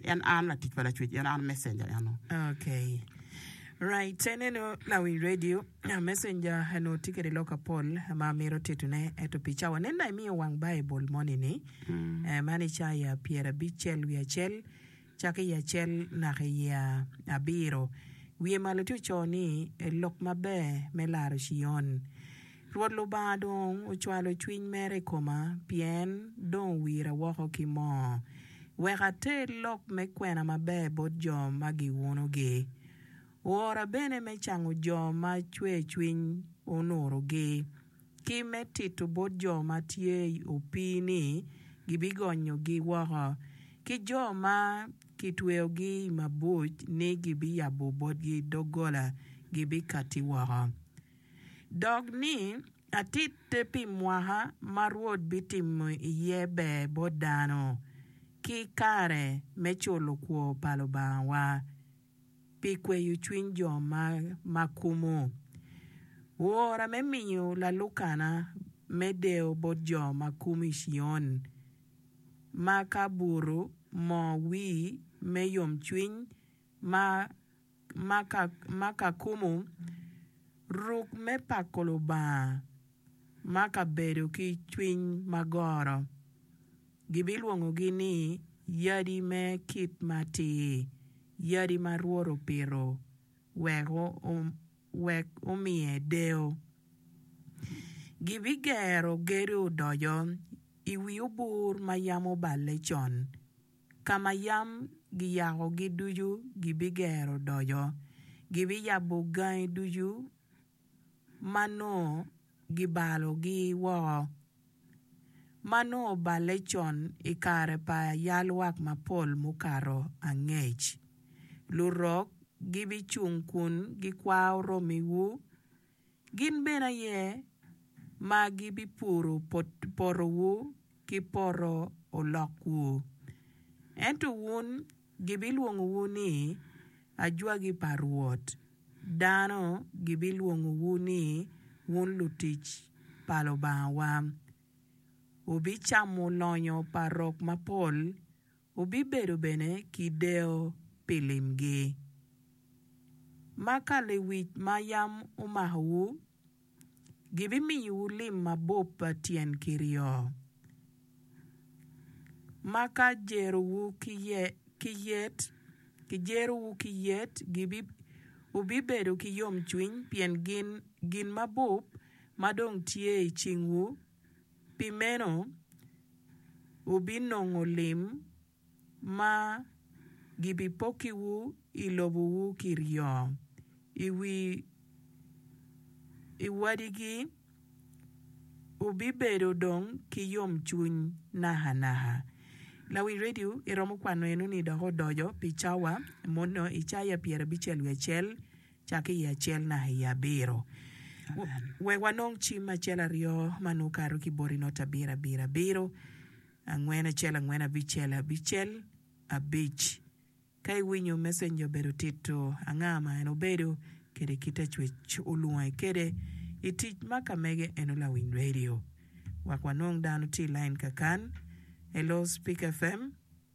En an latic pa Lacwec, en an messenger eno. Okay. Right, te neno lawiny radio, messenger eno tye kede lok apol ma mito titone, eto pi cawa nen da imiyo wang Baibul moni ni, eh, man Icaya pyerabic cel wiye acel, cako iye acel naka iye abiro. Wiye malo tye ocoo ni, Lok maber me laro Cion. Rwot Lubanga dong ocwalo cwiny mere i koma, pien dong owira woko ki moo, wek ater lok me kwena maber bot jo ma giunogi. Oora bene me cango jo ma cwercwiny onurogi, ki me tito bot jo ma tye i opii ni gibigonyogi woko, ki jo ma kitweyogi i mabuc ni gibiyabo botgi doggola, gibikatti woko. dok ni atitte pi mwaka ma Rwot bitimo iye ber bot dano, ki kare me culo kwo pa Lubangawa, pi kweyo cwiny jo ma kumo, wora me miyo lalukana me deyo bot jo ma kumo i Cion, ma ka buto moo wii me yomcwiny ma ma ka kumo ruk me pako Lubanga ma ka bedo ki cwiny ma goro, gibilwongogi ni yadi me kit matir, yadi ma Rwot opito wek omiye deyo. Gibigero gedo odoco i wi obur ma yam oballe con, Ka ma yam giyakogi ducu gibigero odoco, gibiyabo gangi ducu ma nongo gibalogi woko, ma nongo oballe con i kare pa yalwak mapol mukato angec. Lurok gibicung kun gikwao romiwu. Gin bene aye ma gibipuro potowu ki poto olokwu. Ento wun gibilwongowu ni, 'Ajwagi pa Rwot, dano gibilwongowu ni, 'Wun lutic pa Lubangawa. Wubicamo lonyo pa rok mapol, Wubibedo bene ki deyo pi limgi. Ma ka lewic ma yam omakowu gibimiyowu lim mabup pa tyen kiryo, ma ka jerowu ki yet, kijerowu ki yet, wubibedo ki yomcwiny pien gin mabup ma dong tye i cingwu. Pi meno, wubinongo lim ma gibipokkiwu i lobowu kiryo i wi wadigi, wubibedo dong ki yomcwiny nakanaka. Lawi redio iromo kwano eno-ni dok odoco pi cawa mono i cawa pyerabicel wiye acel cake i acel naka i abiro. Wek wanong cim acel aryo ma nongo kato ki boti not abiro abiro abiro, angwen acel angwen abicel abicel abic. Ka iwinyo messenger obedo tito anga ma en obedo kede kit acwec olwonge kede i tic ma ka mege eno lawiny radio. Wek wanong dano tye i lain kakan, Hello Spik FM,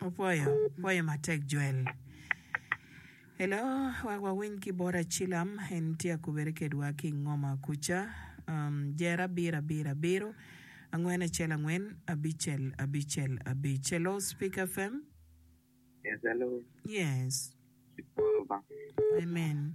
Apwoyo, apwoyo matek Jwel. Hello, wek wawiny ki bot Acilam, en tye akubere kedwa ki i Ngoma kuca. Um, jer abiro abiro abiro, angwen acel angwen, abicel abicel abic. Hello, Speak FM. Yes, hello. Yes. Amen.